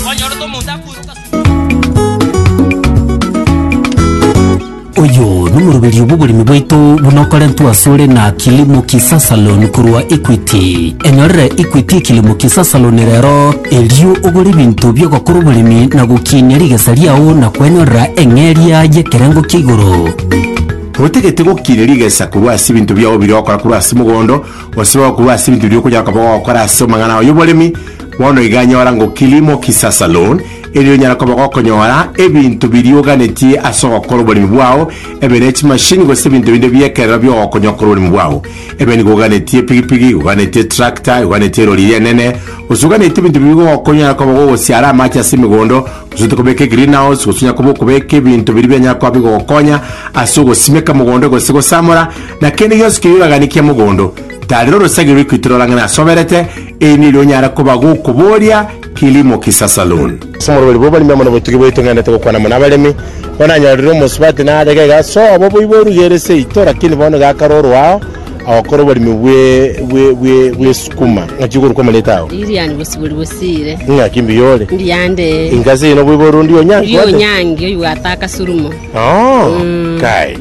Onyorete omonto akoiroka Oyo nomoroberio bw'oboremi bwaito buna okorentwe asore na Kilimo Kisa Salon korwa Equity. Enyorere Equity Kilimo Kisa Salon rero erio ogore ebinto bi'ogokora oboremi na gokiinia rigesa riao na kwenyorera eng'eria y'ekerengo kia igoro. Otagete gokiinia rigesa korwa ase ebinto biao biria ogokora korwa ase mogondo, gose korwa ase ebinto biria okonyara koba ogokora ase amang'ana ao y'oboremi, Bono iga nyora ngo kilimo kisasa loan, erio onyare koba gokonyora ebinto biria oganetie ase ogokora oboremi bwao, ebe ne chimashini gose ebinto binde bi'ekerero bi'ogokonya okore oboremi bwao. Ebe nigo oganetie epigipigi, oganetie tractor, oganetie erori eria enene, gose oganetie ebinto biria bigogokonya onyare koba gogosiara amache ase emegondo, gose ote kobeka egreenhouse, gose onyare koba okobeka ebinto biria bianyare koba bigogokonya ase ogosimeka mogondo gose gosamora, na kende gionsi keria oraganikia mogondo. Tarera orosegi rw'ekwiti rorang'ane ase oberete, Eri neri onyara koba gokoboria kilimo kisasalun. Ase omorweri bw'oboremi omonene botugi bwaito ng'endete gokwana mono abaremi, bono nanyorire omosubati narege iga ase obo boibo orugeire seito, lakini bono iga akarorwa ao agokora oboremi bw'esukuma. Ng'aki okorokwa amarieta ao? Lilian Bosibori Bosire. Ing'aki mbuya ore? Mbuya nde. Inga ase eyio noboibo ore ondiye onyangi one? Ondiye onyangi oyobwate akasurumo. Oo! Kai.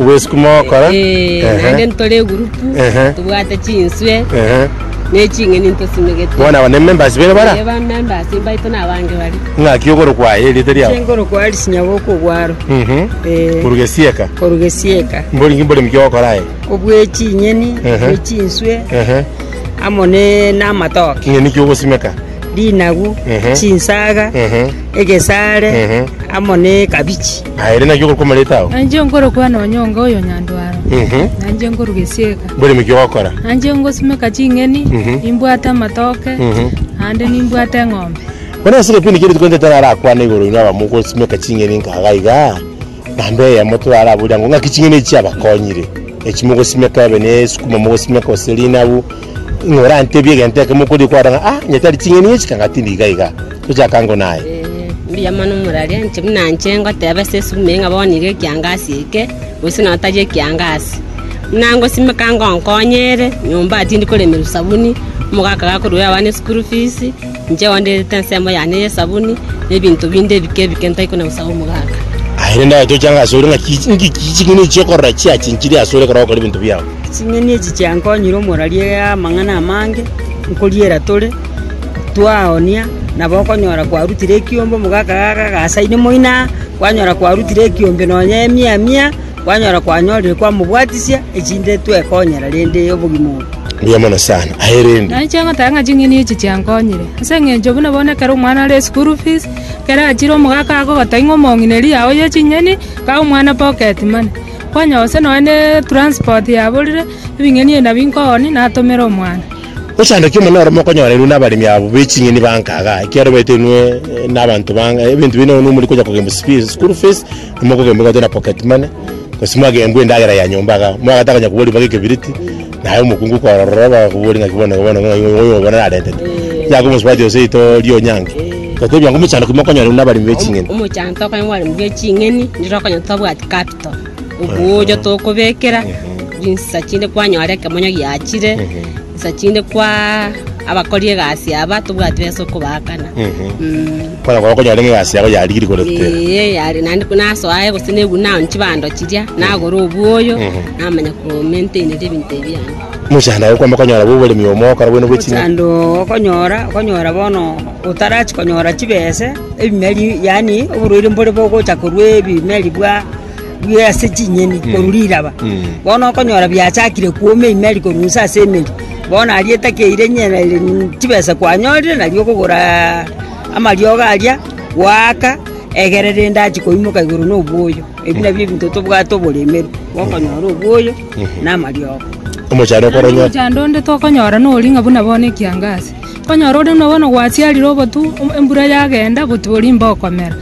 Obwesuku mogokora. Eh, Ehe. naende ntore egurupu, Ehe. tobwate chinswe, Ehe. na eching'eni ntosimegete. Bono aba nemembers bene bara? Eh, ba members mbaito na abange bare. Ng'aki okorokwa aye erieta riao? Ase nkorokwa Alice Nyaboko obwaro. Mhm. Eh. Korwa gesieka. Korwa gesieka. Mbori inki mboremi kia ogokora aye? Obwe chinyeni, Ehe. obwe chinswe, Ehe. amo ne namatoke. Ing'eni ki ogosimeka? Rinagu, Ehe. chinsaga, Ehe. egesare, Ehe. amo ne kabichi. Aye ere naki okorokwa amareta ao? Nanche nkorokwa nonyonga oyo Nyandwaro. Nanche nkoruga esieka. Mboremi ki ogokora? Nanche ngosimeka ching'eni, nimbwate amatoke, naende nimbwate eng'ombe. Bono ase ekepindi kiaito Korinto tari arakwane igoro inwe abamogosimeka ching'eni inka iga iga, na mbe eyemo toraboria ng'o, ng'aki ching'eni echi chiabakonyire? Echi mogosimeka ebe nesukuma mogosimeka gose rinabu, Ng'a orantebie egento ekemo okoria kwaro ng'a, Ah, onye tari ching'eni echi, kang'aa tindi iga iga. Tochaka ango naye. Eh, mbuya mono omorwaria, inche buna inche ngoteba ase esuguma eye ng'a bono nigo ekiangasi eke, gose nonya tari ekiangasi. Buna ngosimeka ngonkonye ere, nyomba tindi koremerwa sabuni, omogaka gakorwa oyo abane school fees, Inche oanderete ensemo yane y'esabuni, na ebinto binde ebike ebike ntai kona gosaga omogaaka. Aye rende aye toche ang'e asore, ng'aki ng'aki ching'eni echi okorora chiachinchire asore ekero ogokora ebinto biao? Ching'eni echi chiankonyire omoraria amang'ana amange nkoriera tore, twaoonia, nabo okonyora kwarutire ekiombe, omogaaka gaaka gagasaine moino aa, kwanyora kwarutire ekiombe nonya emia mia. Kwanyora kwanyorire kwamobwatisia, echinde twekonyera rende obogima obo. Mbuya mono sana aye rende. Nainche ngoteba ng'a ching'eni echi chiankonyire, ase engencho buna bono ekero omwana are eschool fees, ekero achire omogaka agogotebia ng'a omong'ineri yao ye ching'eni, kaa omwana pocket money. Kwanyora gose nonya ne transport yaborire, ebing'eni ebi nabio nkooni natomera omwana. Ochandaki omonene ore mokonyoreirwe nabaremi abo be ching'eni bankaga, ekiagera obetenwe nabanto bange, ebinto binde nonya omori konya kogenda school fees, Nimokogembwa gocha na pocket money, gose mwagembwa endagera ya nyomba iga, omwagato akanya kobori mpaka ekebiriti, naye omokungu korora bakobori ng'aki bono iga bono ng'a oyo oyo obo narentete. Yaka omosubati ase ritogo ria Onyangi, totebia ng'a omochando ki mokonyora buna abaremi be ching'eni. Omochando tokonyora buna abaremi be ching'eni, nigo okonyora totabwati capital, obuya tokobekera, rinsisa chinde kwanyora ekemonyo giachire. Chisa chinde kwa abakori egasi aba tobwati besa okobaakana. Mm. Kwanya korora konyare ng'a egasi yago yarigirie koreta ere. Ee, yari naende ko nasoa aye gose nebu naoni chibando chiria, nagora obwoyo, Mhm. namanya komaintaineria ebinto ebi yane. Omochando ogo kwamba konyora bwa oboremi omo ogokora bwene bwe ching'aki. Omochando okonyora, okonyora bono otarachi konyora chibese, ebimeri yaani oborwaire mbore bogocha korwa ebimeri bwa bwire ase chinyeni korwa riraba. Bono okonyora biachakire kwoma eimeri korwa inse ase emeri, bono aria etakeire nyereire mm, chibesa kwanyorire nario okogora amariogo aria, gwaaka egere rende achi koimoka igoro na obwoyo. Ebi nabio ebinto tobwate oboremeru, gokonyora obwoyo na amariogo. Omochando okore Naende onye omochando onde tokonyora noria ng'a buna bono ekiangazi, okonyora ore buna bono gwachiarire obotu, em- embura yagenda, obotu boria mbokomera.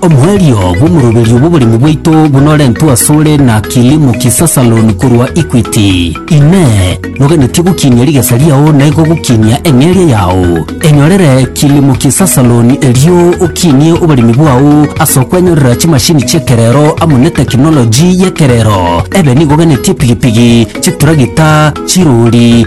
Omoerio bw'omoroberio bw'oboremi bwaito buna orentwe asore na Kilimo Kisasa Loan korwa Equity. Inee! Noganetie gokinia rigesa riao na igo gokinia eng'eria yao? Enyorere Kilimo Kisasa Loan erio okinie oboremi bwao ase okwenyorera chimashini chi'ekerero amo ne tekinoloji y'ekerero. Ebe nigo oganetie pigipigi, chituragita, chirori,